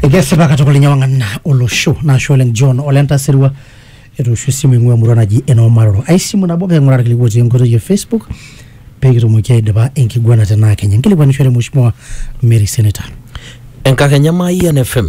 Ekesipa katukul ninye wang'an olosho naashe oleng John ole Ntasirua etoosho esimu eing'ua emurua naji enoo Maroro. Ai simu nabo pee king'uraa irkiliku otii enkoitoi e Facebook pee kitumoki aidipa enkiguana tenaa kenya. Nkilikuanishore Mheshimiwa Mary Senator. Enkakenya Mayian FM.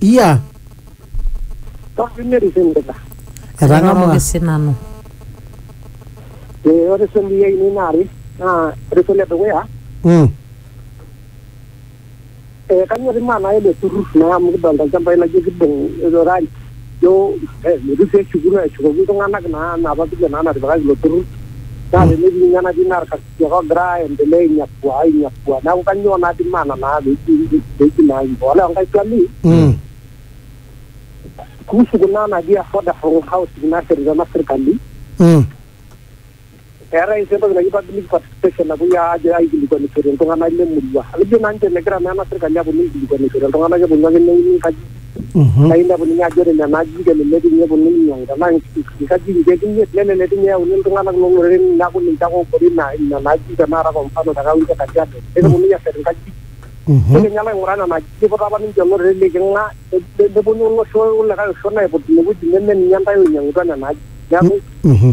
iya etang'amua Kairoroki sinanu ore swali ai nini naare naa ore swali edukuya Mm. eh, kanyor imaa naa ele turrur naa amu kidolta ilchambai laijo kidong irorari jo eh, metu sii eshuku eshukoki iltung'anak naa napa vile naa natipikaki ilo turrur naa tenetii ninye enatii naa irkas- Jehova ogira aendelea ainyakua ainyakua. Neeku kanyioo naa di maana naa peji peji naa hivyo. Ore enkae swali Mm. kuhusu kuna naji affordable housing nashetita ena sirkali, Mm. eetae sii entoki naji public participation napuoi ajo aikilikwanishore iltung'anak le murua. Ekejo naa ninche megira naa ena sirkali aponu aikilikwanishore iltung'anak keponu ake neuni nkajijik Mhm. naa inepu ninye ajo ore nena ajijik elelek ninye eponunui ainyiang'u tenaa nk- nkajijik nkeek imiet nelelek ninye eyauni iltung'anak loong'oreren neeku ninche ake oobore ina nena ajijik tenakata kwa mfano te kaunti e Kajiado neponunui aashet nkajijik Mhm. nikinye alo aing'uraa nena ajijik iputa apa ninche olorere liking'a ne- ne- neponu olosho likae osho aiput ine wueji neme ninye intae oinyiang'utua nena ajijik neeku Mhm.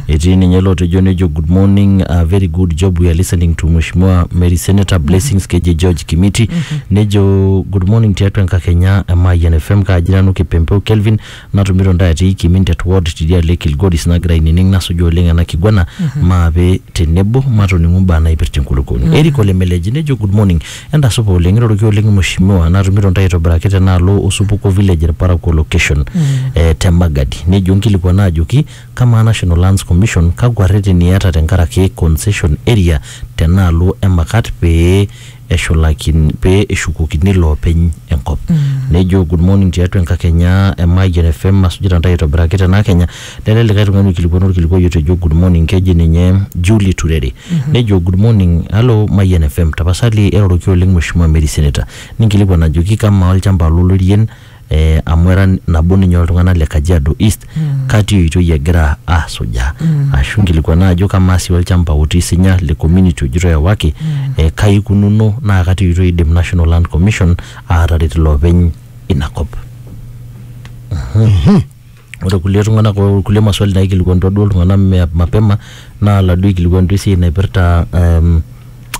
Etii ninye lotejo nejo good morning uh, very good job we are listening to Mheshimiwa Mary Senator Blessings Keje George Kimiti nejo good morning tiatua enkakenya e Mayian FM kaaji nanu Kipempeu Kelvin natumito ntae atii Kimindet ward tidialo e Kilgoris nagira ainining nasuju oleng ena kiguana maape tenebo matoning'u mbaa naipirta enkulukuoni. Eric Olemeleji nejo good morning entasupa oleng iroroki oleng Mheshimiwa natumito ntae aitobiraki tenaalo osupuko village irparakuo location eh, te Magadi nejo nkilikuana ajoki Kamaa National Lands Commission kakwa rreteni iyata tenkaraki concession area tenaalo emakat pee eshulakin pee eshukokini iloopeny enkop. Nejo good morning tiatua enkakenya e Mayian FM asujita ntae aitobiraki tena akenya. Lele likae tung'ani oikilikuana olkilikuai otejo good morning keji ninye Julie Turere. Nejo good morning hello Mayian FM tapasali eroroki oleng Mheshimiwa Mary Senator ninkilikuan ajoki kamaa olchamba lolorien eh, amu era nabo ninye oltung'anak le Kajiado East mm. kati oitoi egira asujaa mm. ashu nkilikuana ajo kamaa sii olchamba otii sinya le community ojito ewaki mm. eh, kai ikununo naa kati oitoi idim National Land Commission aataret ilopeny ina kop. Mm -hmm. Mm -hmm. ore kulie tung'anak o kulie maswali naikilikuanutua duo iltung'anak me- mapema naa laduo oikilikuanutua esiai naipirta um,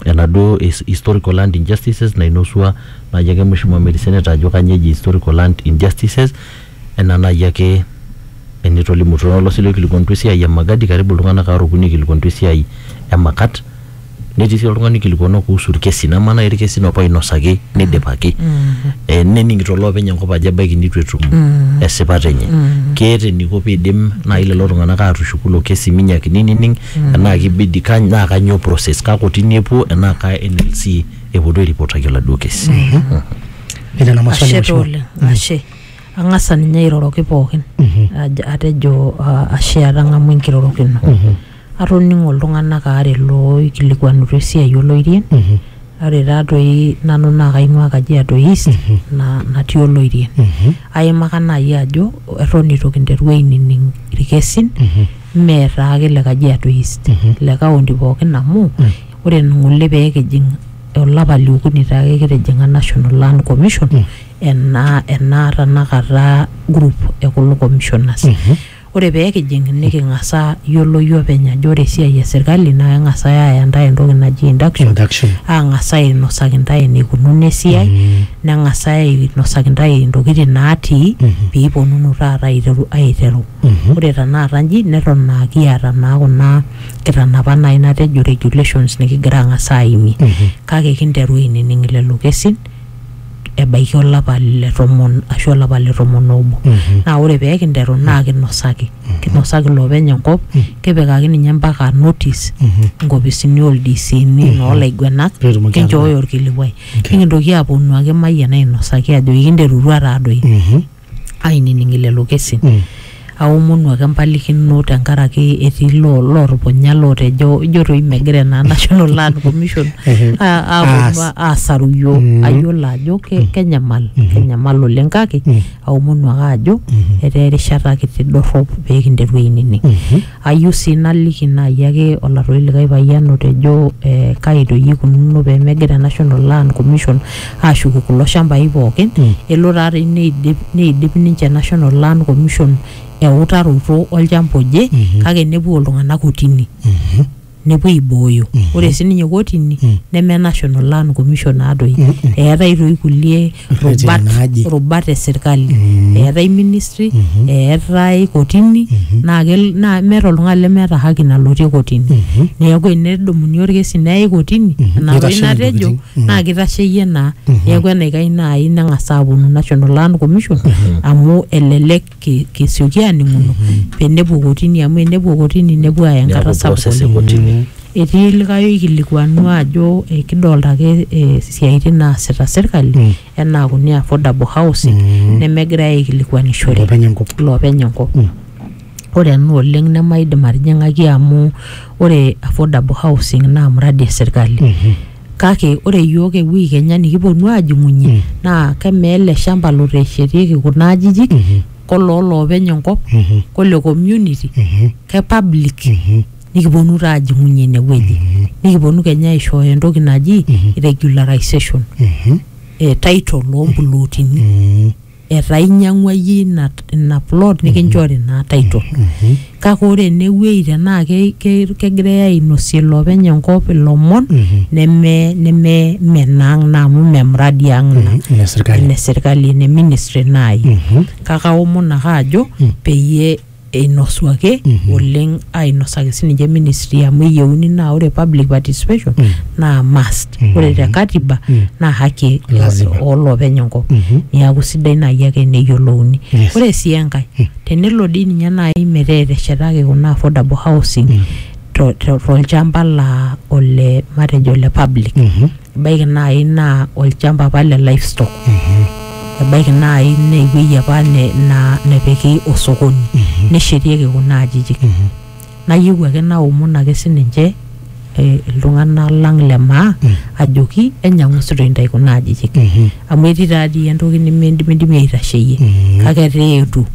enaduo his- historical land injustices nainosua naaji ake mheshimiwa Mary Senate ajo kanyio eji historical land injustices enaa naaji ake enitolimutuo olo sii loikilikuanutua esiai e Magadi karibu iltung'anak aare okuni oikilikuanutua esiai e Makat. netii sii oltung'ani oikilikuanua kuhusu irkesin amaa naaji irkesin opa oinosaki neidipaki Eh, nening'ito loopeny enkop ajo ebaiki nitu etum esipata enye keeta eniko piidim naaji lelo tung'anak aatushuku ilo kesi minyakini nining enaa kibidi kany- naa kanyoo process kaa kotini epuo enaa kaa NLC epuo duo airipotaki oladuo kesi Nena na maswali ashe taa mheshimiwa. oleng ashe ang'asa ninye airoroki pookin Aj- atejo ah, ashe atang'amua enkirorokino Atoning'o iltung'anak aare looikilikuanutua esiai oloirien. Ore taa doi nanu naa kaing'uaa Kajiado East naa natii oloirien. Aimaka naai ajo eton eitu kinteru ainining ilkesin mee taa ake le Kajiado East le kaunti pookin amu ore ng'ole pee kijing olapa le okuni taake kitijing'a National Land Commission ena ena tenakata group e kulo commissioners. Ore pee kijing niking'asa yioloyu openy ajo ore esiai e sirkali naa keng'asai aaya intae entoki naji induction, Induction. aang'as ainosaki intae eneikununo esiai, neng'asai ainosaki intae intokitin naatii pee iponunu taata aiteru aiteru. Ore tenakata inji neton aa kiata naa kuna kitanapat naai natejo regulations nikigira aang'as aaimie kake kinteru ainining lelo kesin ebaiki olapa le tomon ashu olapa le tomon obo naa ore pee kinteru naa kinosaki kinosaki iloopeny enkop kipikaki ninye mpaka notice inkopisini oldisiini noolaiguenak Pee etumoki kinchooyo orkilikuai Okay. nikintoki aaponu ake mayian ainosaki ajo ikinterutua taadoi Mhm. ainining lelo kesin mm. aomonu ake empalikino tenkaraki etii loo lootupunya lootejo ijo toi megira ena National Land Commission aaponu aasaru iyiook mm. ayiolo ajo mm. kenyamal mm-hmm. kenyamal oleng kake mm. aomonu ake ajo mm-hmm. etaa erishata kiti dorrop pee kinteru ainining mm-hmm. Ayieu sii naliki naaji ake olatoi likae payian otejo kai doi eikununo pee megira National Land Commission aashuku kulo shambai pooki. Elo taa doi neidip ninche National Land Commission eutaroto olchamba oje kake nepuo iltung'anak kotini. nepuo aibooyo ore sininye kotini neme national land commission naadoi eetae toi kulie Rreteni rubat naaje. rubat e sirkali eetae ministry eetae kotini naa kel- naa meeta oltung'ani lemeeta haki nalotie kotini neeku enedumuni orkesi neyai kotini ina toi Neitashe natejo intokiting. Mm. naa kitasheyie naa neeku enaikash naai neng'as aaponu national land commission amu elelek ki- kisioki aaning'uno pee enepuo kotini amu enepuo kotini nepuo aaya enkata Neaku sapuk process e oleng. kotini. etii likae oikilikuanu ajo eh, kidolta ake eh, siaitin naasita sirkali Mm. enaa kuni affordable housing Mm. nemegirae aikilikuanishore Iloopeny enkop. iloopeny enkop Mm. ore ena oleng nemaidim atijing'aki amu ore affordable housing naa mradi esirkali Mhm. kake ore iyiook ewiki kenya nikiponu aajing'unye naa kemaa ele shamba loteshetieki kuna ajijik koloo loopeny enkop kole community ke public nikiponu taa ajing'unye inewueji nikiponu kenya aishooyo entoki naji regularization eh, title ompulotini etaa inyiang'ua iyie ina, ina plot nikinchori naa title kake ore enewueji tenaa ke- ke- kegirae ainosie ilopeny enkop ilomon neme neme menaang naa amu mme mradi ang ina Mhm, ine sirkali. ene sirkali ene ministry naaji kake aomon ake ajo peyie einosu ake Mhm. oleng ainosaki sininche ministry amu eyieuni naa ore public participation Mm. naa must Mhm. ore te katiba Mm. naa haki e- Lazima. oolopeny enkop Mhm. niaku sidai naaji ake neyiolouni Yes. ore sii enkae Mm. tenelo dii ninye naaji metaa eteshetaki kuna affordable housing Mm. to- to- tolchamba laa ole matejo ole public Mhm. ebaiki naaji naa olchampa apa le livestock ebaiki naaji naa ewueji apa ne- na- nepiki osokoni neshetieki kuna ajijik nayieu ake naomon ake sininche eh, iltung'anak lang le maa ajoki enyamusito intae kuna ajijik amu etii taadii entoki nemindimidimi aitasheyie kake etaa eetuo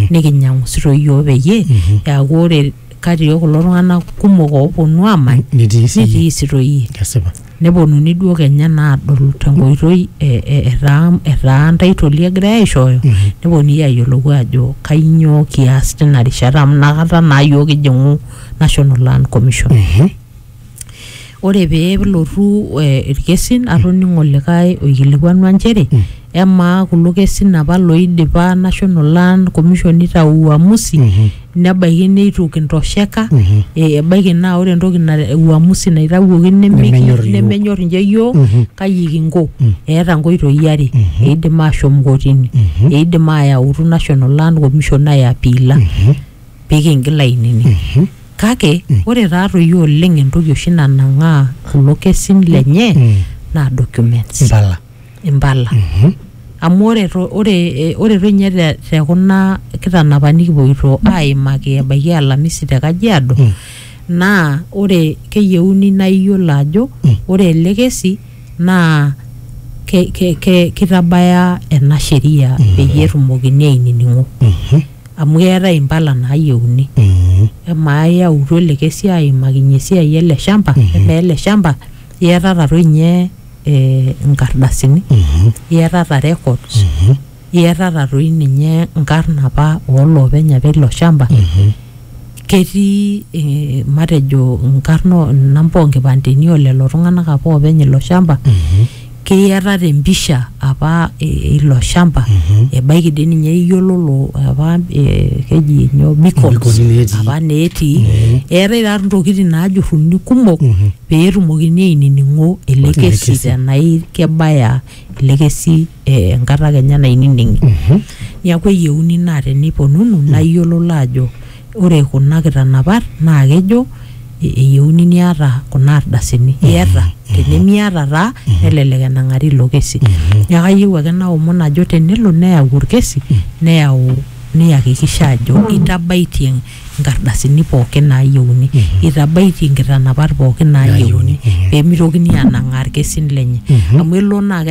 nikinyamusito iyiook peyie eaku ore kati oo kulo tung'anak kumok ooponu aamany Nitii siyie. nitii sitoi iyie Kesipa. neponuni duo kenya naa adol tenkoitoi e- e- etaa etaa ntaitoli egirai aishooyo Mhm. neponunui ayiolou ajo kainyoo kias tina rishata amu inakata naa yiok kijing'u national land commission Mhm. ore pee elotu irkesin atoning'o likae oikilikuanua nchere emaa kulo kesin apa loidipa National Land Commission nitau uamusi nebaiki neitu kintosheka eh, ebaiki naa ore entoki na uamusi naitawuoki nemiki Nemenyor iyiok. nemenyor inche yiok kaji kinko eeta nkoitoi are eidim ashom kotini eidim ayautu National Land Commission aiapiila pee kiingil ainining. Kake ore taatoi oleng entoki oshi nanang'aa kulo kesin lenye naa documents, Impala. impala. Amu ore to- ore eh, ore toi ninye te- te kuna kitanapa nikipuoito aimaki ebaiki alamisi te Kajiado naa ore keyieuni naa iyiolo ajo ore ele kesi naa ke- ke- ke- kitabaya ena sheria peyie etumokini ainining'o. Amu keetae impala naayieuni. Amaa iyautua olikae siai aimakinyie esiai ele shamba, amaa ele shamba iyatata toi ninye inkardasini, iyatata records, iyatata toi ninye inkarn apa oo loopeny apa eilo shamba, ketii matejo inkarn inamba oo nkipandeni oo lelo tung'anak apa oopeny ilo shamba. keyiata te mpisha apa eh, ilo shamba ebaiki dii ninye iyiololo apa eh, keji nyoo beacons Beacons netii. apa netii eetae taa ntokitin naajurruni kumok pee etumokini ainining'o ele Ele kesi kesi. tenai kebaya ele kesi eh, enkata kenya nainining'i niaku eyieuni naa teniponunu naa iyiololo ajo Ore kuna kitanapat naa kejo eyieuni niata kuna ardasini. Iyata? Tenimiata taa nelelek enang'ari ilo kesi. Neeku ayieu ake naomon ajo tenelo neyau olkesi neyau niyakikisha ajo itabaitie nkardasini pooki naayieuni. Itabaitie nkitanapat pooki naayieuni peemitokini aanang'aa ilkesin lenye. Amu elo naa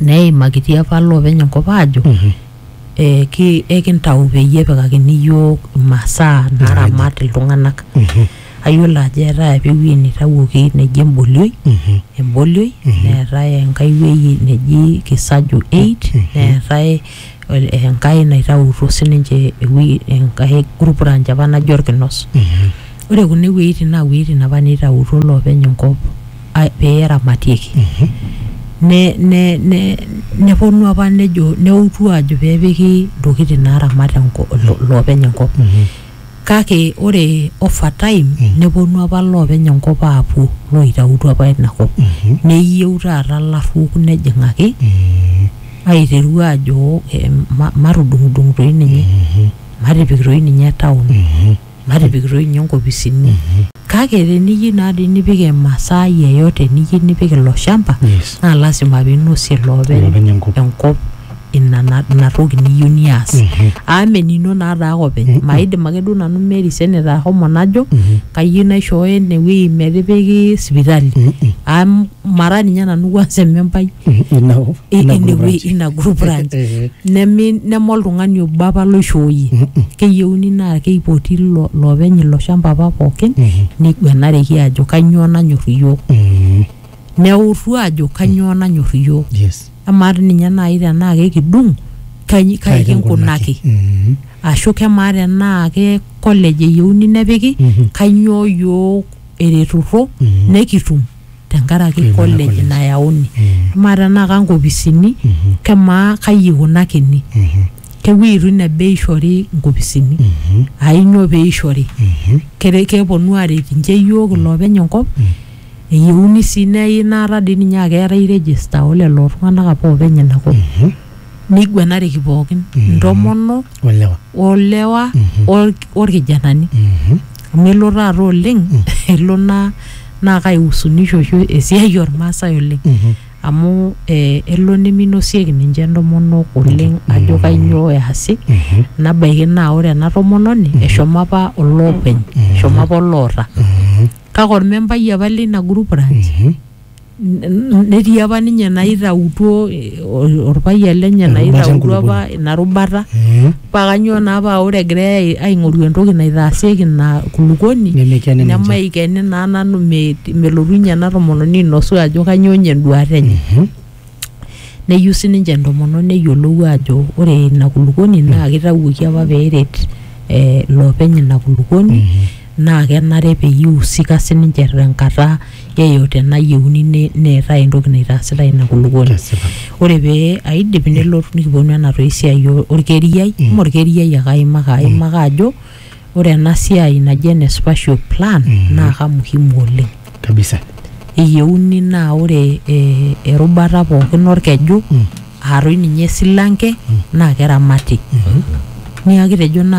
neimakitia apa loopeny enkop aajo Mhm. eh, ki- ekintau peyie epikakini iyiook imasaa naaramat iltung'anak Mhm. ayiolo ajo eetae apa ewueji neitawuoki neji embolioi Mhm. embolioi neetae enkae wueji neji kisaju 8 neetae ol- enkae naitautuo sininche ewueji enkae group ranch apa naji orkinos Mhm. ore kuna wuejitin naa wuejitin apa neitautuo loopeny enkop pee eramatieki nepuonu apa nejo neutu ajo pee epiki ntokitin naaramat iloopeny enkop kake ore over time nepuonu apa iloopeny enkop aapuo looitautuo apa ina kop neyieu taata ilaruok nejing'aki aiteru aajo matudung'udung toi ninye matipik toi ninye town. natipikitoi ninye nkopisini kake teniyieu naa dii nipik emasaa yeyote niyieu nipik ilo shamba Yes. naa lasima pinosie Ilopeny iloopeny enkop. enkop ina na- ina toki niyieu nias Mhm. amu menino naa taa ake openy Mhm. maidim ake duo nanu Mary Senator ahomo najo Mhm. kayieu naishooyo enewueji metipiki sipitali Mhm. amu mara ninye nanu kwanza emembai ina i- ina ine group wei- ranch. ina group ranch Eh, neme neme oltung'ani obo apa loishooyie mhm, keyieuni naa keipoti ilo loopeny ilo shamba apa pookin mhm, neiguanareki ajo kanyoo nanyor iyiook mhm. neutu ajo kanyoo nanyor iyiook yes amaa ti ninye naaji tenaa kekidung kai kai kinkunaki Mhm, ashu kemaa tenaa ke college eyieuni nepiki mhm, kanyoo iyiook eretuto mhm. nekitum tenkaraki Ina college college. nayauni Mm. amaa tenaa kankopisini Mhm. kemaa kai ikunakini Mhm. kewueitu ine bei ishori nkopisini Mhm. ainyoo pee ishori Mhm. Kere- keponu aaret inche iyiook iloopeny enkop eyieuni sii neyai inaata dii ninye akeetae register oo lelo tung'anak apa oopeny ina kop Mhm. neiguanareki pookin Mhm. intomonok olewa olewa Mhm. or- orkijanani Mhm. amu elo taata oleng elo naa naa kaihusunisho oshi esiai ormaasai oleng amu eh, elo neminosieki ninche entomonok oleng ajo kainyoo easi nabaiki naa ore ena tomononi eshomo apa olopeny eshomo apa oloota kake ormembai apa leina group ranch netii apa ninye naitautuo eh, ol- olpayian lenye Erubata naitautuo apa enkuluponi. ina rubata Mm. paa kanyoo naa paa ore egirai ai- aing'oru entoki naitaasieki ina kulukoni Nemekeni ninche. nemaikeni naa nanu me- melotu ninye ena tomononi ainosu ajo kanyoo ninye enduata enye Mhm. neyieu sininche entomononi neyiolou ajo ore ina kulukoni naa kitawuoki apa peeret eh, loopeny ina kulukoni naa kenare peyie ihusika sininche tenkata yeyote nayieuni ne- neetae entoki naitaasitai ina kulukuoni Kesipa. ore pee aidip nelotu nikiponu ena toi siai o- orkeriai mm. orkeriai ake aimaka aimaka ajo ore ena siai naji ene spatial plan mm. naa kamuhimu oleng kabisa eyieuni naa ore eh, erubata pookin orkeju Mm. aatoi ninye esilanke naa keramati niaku kitejo naa